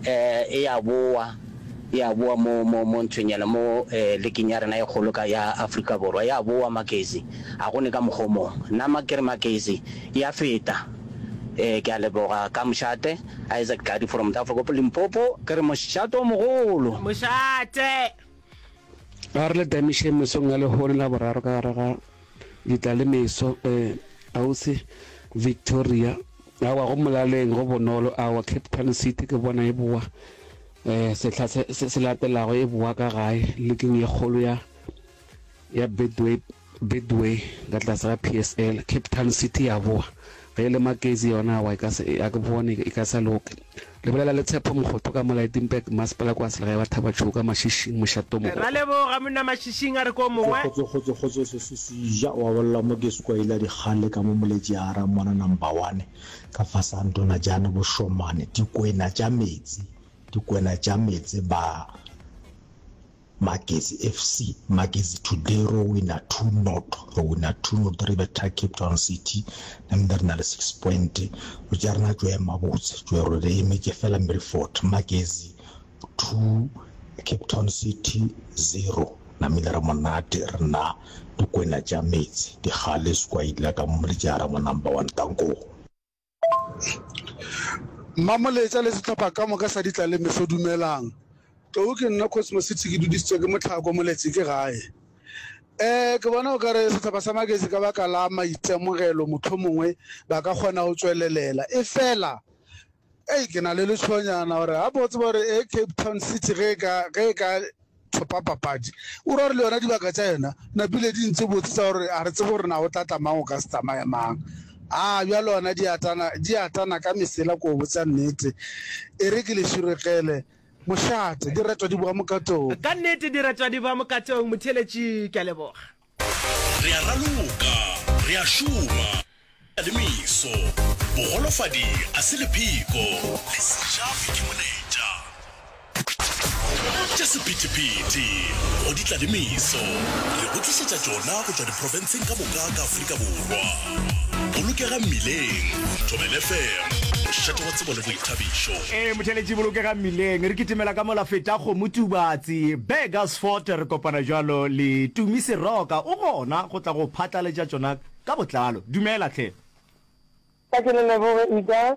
e ya bowa, e ya bowa mo, mo, mo nthonyana, mo eh, leking ya rena e kgolo ka ya Afrika Borwa, e ya bowa Makezi. Ga go ne ka mokgwa o mongwe. Nna ma kere Makezi e ya feta. Eh, ke a leboga ka mošate. Isaac Tladi from Tafelkop, Limpopo, ke re mošate o mogolo. Mošate! Ga re le tamišeng mesong ya lehono la boraro ka gare ga. Di tla le meso, eh, Ausi Victoria. Aowa, go molaleng go bonolo, aowa, Cape Town City ke bona e bowa, eh, sehla se, se, se latelago e bowa ka gae, liking ye kgolo ya, ya Bedway, Bedway, ka tlase ga PSL, Cape Town City ya bowa. Ge e le Maketsi yona awa e ka se, a ke bone e ka sa loka. Lebelela le Tshepo Mokgotho ka mo Lydenburg, Masepala kwa Selegae wa Thabatšhou ka Mašišing, Mošate o Mogolo. Ra leboga monna Mašišing a re ko mongwe. Kgotso kgotso kgotso kgotso se se ja wa bolela mo ke skwaila dikgale ka mo moletši a ra mona number one ka fasa ntona jane bo shomane dikwena tša metsi dikwena tša metse ba Magesi FC, Magesi today ro wina two not, ro wina two not re betha Cape Town City nambe re na le six point, lo tša rena tšo ema botse tšo re re emetše fela mme re fort. Magesi two Cape Town City zero namile ra monate re na dikwena tša metse dikgale skwaila ka mo le tša ra mo number one tankong. Mmamoletša le sehlopha ka moka sa ditlalemeso, dumelang. Tlou ke nna Cosmocity, ke dudišitšwe ke Mohlako, Moletši ke gae. Um, ke bona o ka re sehlopha sa Magesi ka baka la maitemogelo mohlomongwe ba ka kgona go tšwelelela. Efela, hei, ke na le letšhoanyana gore gabotse gore e Cape Town City ge e ka, ge e ka, Thopapapadi o ra gore le yona dibaka tša yona napile di ntse botse tsa gore a re tsebe gore na o tla tla mang o ka se tsamaye mang a bjalo ona di atana di atana ka mesela ko botsa nnete e re ke le širegele mošate di retwa di boa mokatong ka nnete di retwa di boa mokatong motheletši ke a leboga Re a raloka, re a šoma, re na le meso. Bogolofadi a se lepheko, le sejafi ke moletša. Tša sephethephethe go di tla le meso, re go tlišetša tšona go tšwa diprofenseng ka moka ka Afrika Borwa. bolokega mmileng thobel fm mošate wa tsebo le boithabišo ee motheletši bolokega mmileng re kitimela ka mola feta kgomo tubatsi burgersfort re kopana jalo le tumi seroka o gona go tla go phatlaletša tšona ka botlalo dumela tlhe Ka ke le leboge Ida,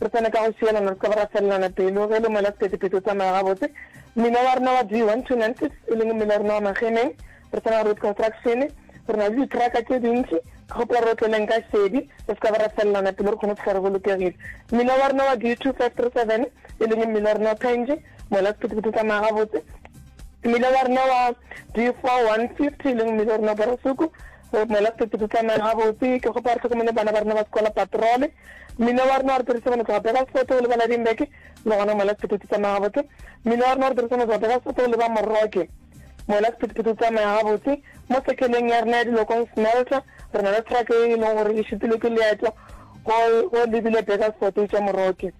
Re swane ka go šielana, re se ke ra felelana pelo. Ge e le mola sephethephethe o tsamaya gabotse. Mmila wa rena wa D1 to Nantes, e leng mmila wa rena wa Magemeng, re tsena road construction, re na le di-truck tše dintši. Ke kgopela gore o tle le nka šedi, re se ke ra felelana pelo, re kgone go fihla re bolokegile. Mmila wa rena wa D2537, e leng mmila wa rena wa Penge, mola sephethephethe o tsamaya gabotse. Mmila wa rena wa D4150, e leng mmila wa rena wa Borosoko, mola sephethephethe o tsamaya gabotse. Ke kgopela re hlokomele bana ba rena ba sekola patrol. mmino wa rena wa re dirisa bana tloga pega sefoto go lebala dimbeke le gona moela sephetho tse tsamaya gabotse mmino wa rena wa re dirisa bana tloga pega sefoto go leba morroke moela sephethephetho tsamaya gabotse mo sekeleng ya rena ya dilokong smelter re na le traka e e leng gore e šupile ke leeto go lebile pega sefoto itša morroke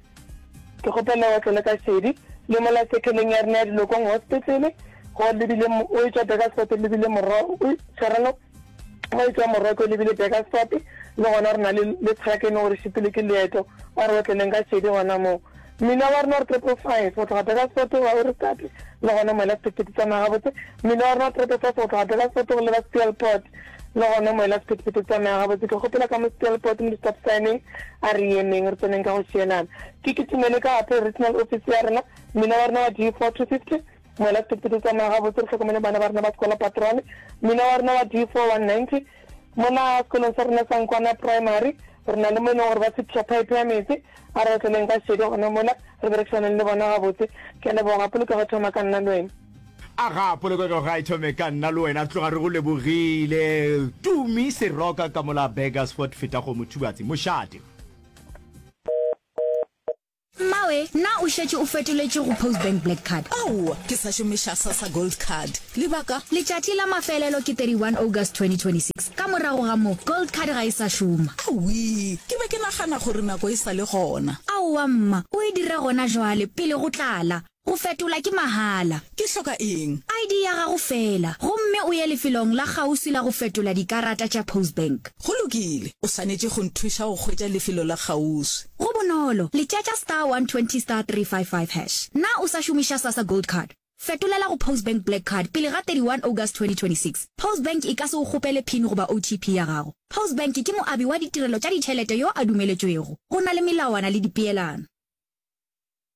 ke kgopela wa tlole ka šedi le mola sekeleng ya rena ya dilokong hospitlele go lebile o itša pega sefoto lebile morro tshwarelo Maitwa Moroko e lebile Burgersfort, le gona re na le le Tshakene gore šitile ke leeto, ba re otleleng ka šedi gona moo. Mmila wa rena re Triple Five go tloga Burgersfort wa o re tate, le gona moela sephethephethe tsamaya gabotse. Mmila wa rena Triple Five go tloga Burgersfort go leba Steelport, le gona moela sephethephethe tsamaya gabotse. Ke kgopela ka mo Steelport mo di-stop sign-eng a re emeng re tseneng ka go šielana. Ke kitimele ka Apple Regional Office ya rena, mmila wa rena wa D four two fifty. Mola ditepe di tsamaya gabotse, re hlokomele bana ba rena ba sekola Patrone, mmina wa rena wa D4 190. Mona sekolong sa rena sa Nkwana Primary, re na le mo e leng gore ba sepša pipe ya metse. A re otleleng ka šedi gona mola, re berekišaneng le bona gabotse. Ke a leboga, polokego e thoma ka nna le wena. Aga, polokego ga e thome ka nna le wena, re tloga re go lebogile. Tumi Seroka ka mola Burgersfort, Fetagong, Mothubatse, Mošate. Mmawe, na o šetše o fetoletše go Postbank Black Card? Aowa, ke sa šomiša Sassa Gold Card. Lebaka? Letšatši la mafelelo ke 31 August 2026. Ka morago ga moo, Gold Card ga e sa šoma. Awii, ke be ke nagana gore nako e sa le gona. Aowa mma, o e dira gona jwale, pele go tlala. Go fetola ke mahala. Ke hloka eng? ID ya gago feela, gomme o ye lefelong la kgauswi la go fetola dikarata tša Postbank. Go lokile. O swanetše go nthuša go hwetša lefelo la kgauswi. Go bonolo, letšatša star 120 star 355 hash. Na o sa šomiša Sassa Gold Card? Fetolela go Postbank Black Card pele ga 31 August 2026. Postbank e ka se go kgopele pin goba OTP ya gago. Postbank ke moabi wa ditirelo tša ditšhelete yo a dumeletšwego. Go na le melawana le dipeelano.